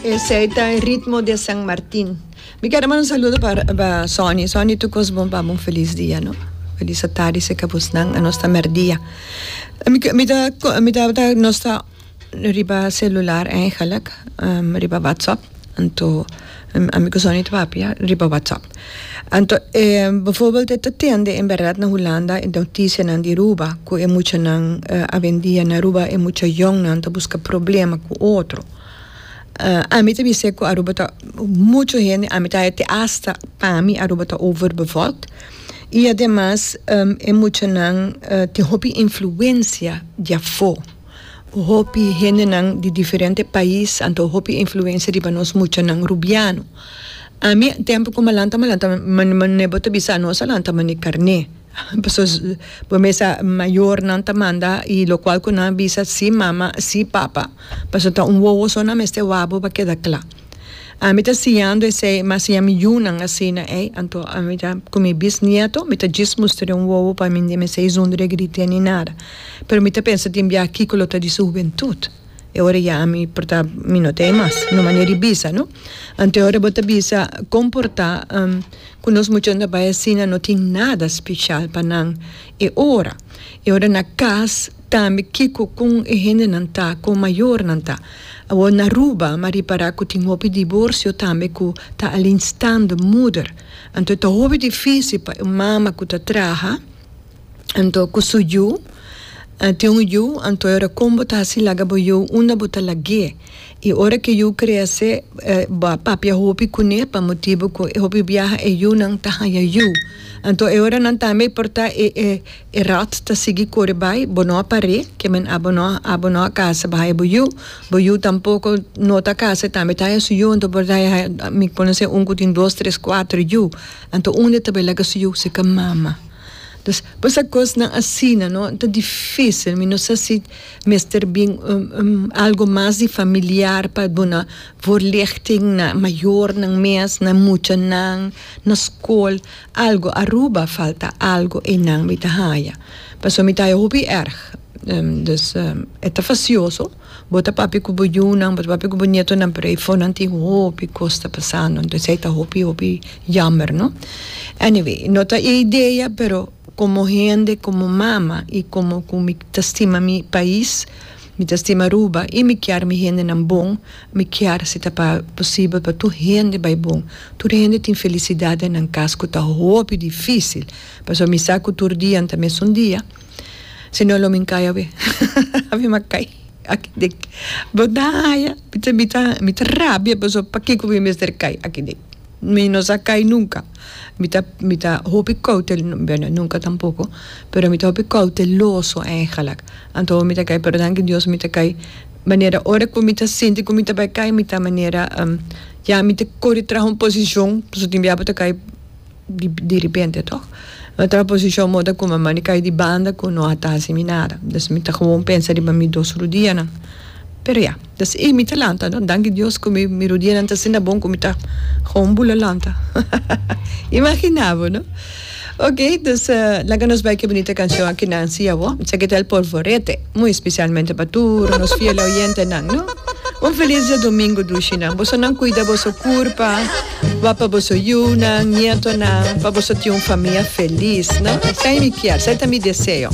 Esey ta e ritmo di San Martin. Mi quiero mandar un saludo para Sonny. Sonny, tu cos bon pabo un feliz dia, no? Feliz atadi si ca busnan. A nos ta merdia. Mi ta, mi ta, ta, nos ta riba celular eigenlijk, riba WhatsApp. Anto. Ami ku Sonny ta papia riba WhatsApp. Anto e bivoorbeeld e ta tende en berdad na Hulanda e notisianan di Aruba ku e muchanan awendia na Aruba e mucha yòngnan ta buska problema ku otro. Ami ta bis'é ku Aruba ta muchu hende, ami ta haña te hasta pa mi Aruba ta overbevolkt i ademas e muchanan tin hopi influensia di afó. Hopi hendenan di diferente pais anto hopi influencia riba nos muchanan rubiano. Ami tempo cu malanta malanta mane bo ta bisa nos a lanta mane carne pasobra bo mesa mayornan ta manda y locual cu nan a bisa si mama si papa pasobra ta un wowo so nan mester wawbo pa keda cla. Ami ta siñando esei, ma siña mi yunan asina ei, anto ami ta ku mi bisnieto mi ta djis muster e un wowo pa mi n'e esei zonder e gritia ni nada. Pero mi ta pensa tin biaha kiko lo ta di su hubentut, e ora ya ami por ta mi no ta ei mas, un mane di bisa no. Anto e ora bo ta bisa kon por ta ku nos muchanan ta bai asina no tin nada speshal pa nan e ora. E ora na kas. Tambe kiko con e hendenan ta, con mayornan ta. Awor na Aruba mi a ripara cu tin hopi divorcio tambe cu ta alleenstaande moeder. Anto e ta hopi dificil pa un mama cu ta traha, anto cu su yu, tin un yu, anto e ora con bo ta haci laga bo yu unda bo ta lag'e. Y ora cu e yu crece bo a papia hopi cun'e pa motibo cu hopi biaha e yunan ta haya yu. Anto e ora nan tambe e porta e. E rat ta sigui kore bai, bo no a par'é, ke men abo no, abo no a kase ba haña bo yu, bo yu tampoko no ta kase tambe ta haña su yu, anto por ta haña, mi por haña un ku tin dos, tres, kuater yu, anto unda ta bai laga su yu si ka mama. Entonces, por esa kosnan asina no ta difícil, mi no sa si mester bin algo mas di familiar pa duna voorlichting na mayornan mes, na muchanan, na skol. Algo Aruba falta algo einan mi ta haya paso mi ta haya hopi erg dus e ta facioso bo ta papia cu bo yunan bo ta papia cu bo nietonan pero eifo nan tin hopi cos ta pasando entonces ey ta hopi hopi jammer no anyway no ta e idea pero como hende como mama y como cu mi ta stima mi pais. Mi ta stima Aruba y mi kier mi hendenan bon, mi kier si ta pa posibel pa tur hende bay bon, tur hende tin felicidad den nan cas cu ta hopi dificil, pasobra mi sa cu tur dia no ta mesun dia, si no lo mi cay awe awe mi a cay aki dek, bo ta haya mi ta rabia pasobra pakico mi mester cay aki dek, mi no sa cay nunca. Mi ta mi ta hopi koutel bèrdad nunka tampoko pero mi ta hopi kouteloso ègèlèk anto mi ta kai pero danki Dios mi ta kai manera ora ku mi ta sinti ku mi ta bai kai mi ta manera ya mi ta kore traha un posishon pasobra tin biaha bo ta kai diripente tòg mi ta traha un posishon modo ku mamá a kai di banda ku no a tasi mi nada dus mi ta gewoon pensa riba mi dos rudianan pero ya. Ta si ey mi ta lanta no danki Dios cu mi rodienan ta asina bon cu mi ta Gewoon bula lanta imagina bo no ok dus laga nos bai cu e bunita cancion aki nan si awo mi sa kital polvorete muy especialmente pa tur nos fiel oyentenan no un feliz dia domingo dushi nan boso nan cuida boso curpa wak pa boso yunan nietonan pa boso tin un famia feliz no esey mi kier esey ta mi deseo.